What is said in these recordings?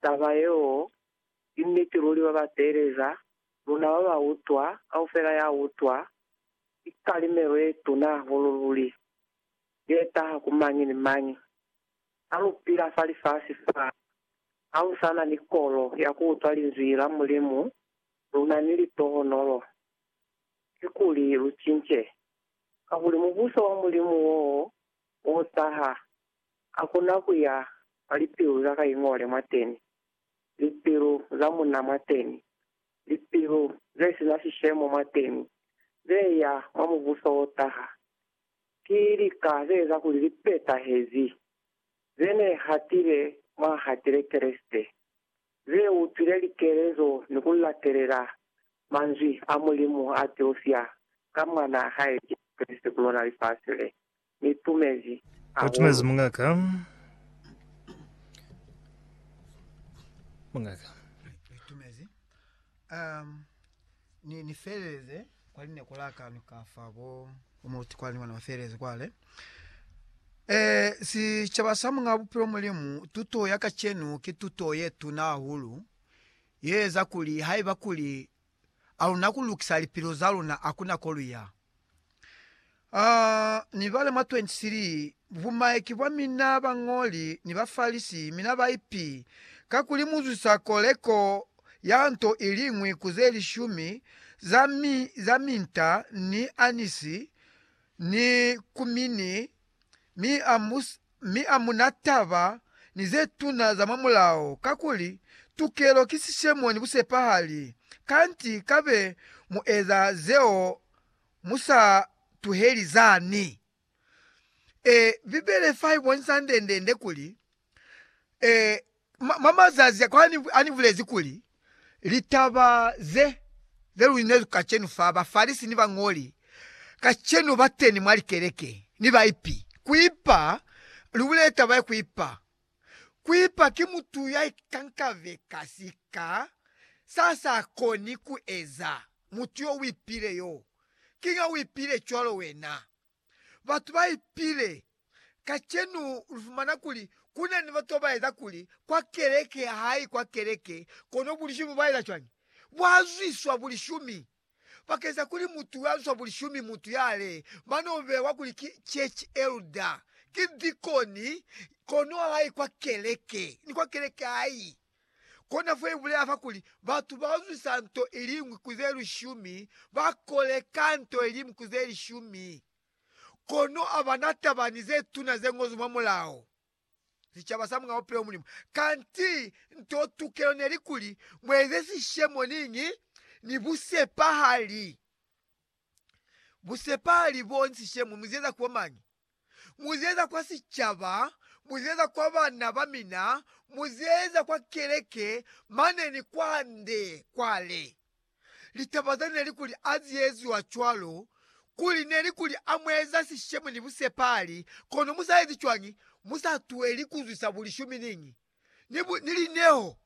Taba yeo ki niti luli ba ba teeleza, luna ba ba utwa, kaufela ya utwa, ki kalimelo ye tuna hahulu luli, ye taha ku mañi ni mañi. Ha lu pila fa lifasi fa, ha lu sa na ni kolo ya ku utwa Linzwi la Mulimu, lu na ni litohonolo. Kikuli lu cince. Kakuli Mubuso wa Mulimu wo Musa ha a kona ku ya mwa lipilu za Kaingole mwateni, lipilu za munna mwateni, lipilu ze si na sishemo mwateni, ze ya mwa Mubuso wo taha. Ki lika ze eza kuli li petahezi, ze ne hatile mwa hatile Kreste, ze utwile likelezo ni ku latelela Manzwi a Mulimu a tiufya ka Mwanaa hae Jesu Kreste ku lona lifasi le. Ni tumezi Utumezi hahulu. mungaka. Mungaka. Ni tumezi. Um, ni, ni feleleze kwa line ku laka ni ka fa bo, bo muluti kwa ni wana ba feleleze kwa le. Eh, sicaba sa Mungabupilo Mulimu, tuto ya kacenu ki tuto ye tuna hahulu. Ye eza kuli haiba kuli a luna ku lukisa lipilo za luna a kuna kolu ya. A ni bale mwa 23, Bumaiki bwa mina bañoli ni Bafalisi, mi na ba ipi, kakuli mu zwisa koleko ya nto iliñwi ku ze lishumi za mi, za minta, ni anisi, ni kumini, mi a mu mi a mu na taba ni ze tuna za mwa Mulao, kakuli, Tukelo ki sishemo ni busepahali, kanti ka be mu eza zeo mu sa tuheli zani. E, Bibele fa i bonisa ndendende kuli, e, Mwa mazazi a kale ha ni bulezi kuli, Litaba ze luli ne lu kacenu fa Bafalisi ni bañoli kacenu ba teni mwa likeleke, ni baipi. Ku ipa, Lu bulele taba ye ku ipa. Ku ipa ki mutu ya ikankabe ka sika sa sa koni ku eza. Mutu yo u ipile yoo. Kiña u ipile cwalo wena? Batu ba ipile. Kacenu ulifumana kuli kuna ni batu babaeza kuli kwa keleke hayi kwa keleke, kono bulishumi bubaeza cwañi? Buazwiswa bulishumi. Bakeñisa kuli mutu uazwiswa bulishumi, mutu yale bano bewa kuli ki church elder, ki dikoni, kono hayi kwa keleke ni kwa keleke hayi. Kona fo ibulela fa kuli, Batu bauzwisa nto iliñwi ku ze lishumi, bakoleka nto iliñwi ku ze lishumi, kono abana taba ni zetuna zeñozwi mwa Mulao, sicaba sa mwa bupilo Mulimu. Kanti nto tukelo neli kuli, Mueze sishemo niñi? Ni busepahali. Busepahali bo ni sishemo, muzieza ku bo mañi? muzieza kwa sicaba, muzieza kwa bana bamina, muzieza kwa keleke, mane ni kwande kwale. Litaba za neli kuli azieziwa cwalo, kuli neli kuli amueza sishemo ni busepali, kono musaezi cwañi? Musatuheli kuzwisa bulishumi niñi, ni, bu, ni lineho.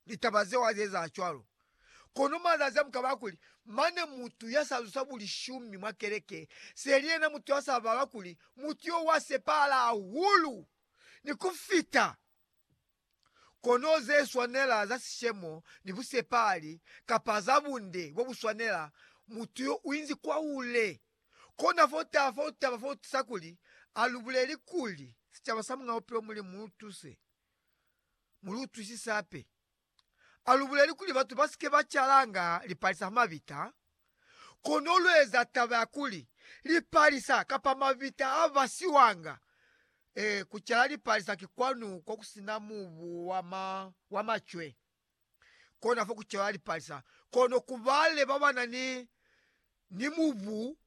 litaba zeo ha zieza cwalo. Kono mazazi a mukaba kuli, mane mutu ya sa zusa bulishumi mwa keleke, seli yena mutu ya sa bala kuli mutu yo wa sepahala hahulu ni ku fita. Kono ze swanela za sishemo ni busepahali, kapa za bunde bo bu swanela, mutu yo u inzi kwahule. Kona fo taha fo taba fo tusa kuli a lu buleli kuli, Sicaba sa Muñ'a Bupilo Mulimu lu tuse. mu lu utwisisi hape. A lu buleli kuli batu ba si ke ba calanga lipalisa ha mabita, kono lu eza taba ya kuli lipalisa kapa mabita a basiwanga. Ee, ku cala lipalisa ki kwanu ko ku si na mubu wa ma, wa macwe. Kona fo ku calwa lipalisa. Kono ku bale ba ba na ni, ni mubu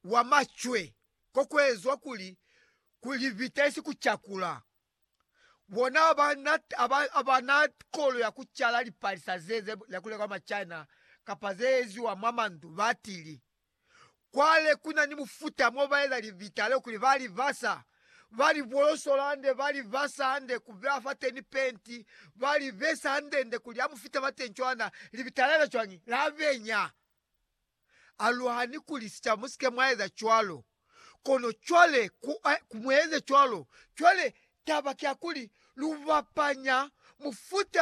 wa macwe, ko ku ezwa kuli, ku libita isi ku cakula. Bona aba na, aba, aba na kolo ya ku cala lipalisa ze, ze lakuleka kwa Machina kapa ze eziwa mwa mandu, batili, Kwale ku na ni mufuta mo ba eza libita leo kuli ba li basa, ba li bolosola hande, ba li basa hande, ku beha fateni penti, ba li besa handende kuli ha mu fita fateni cwana, libita leo cwañi? La benya. Aluhani kuli sika musike mwaeza cwalo. Kono cwale ku, ku mueze cwalo. Cwale, taba ki ya kuli, lu bapanya mufuta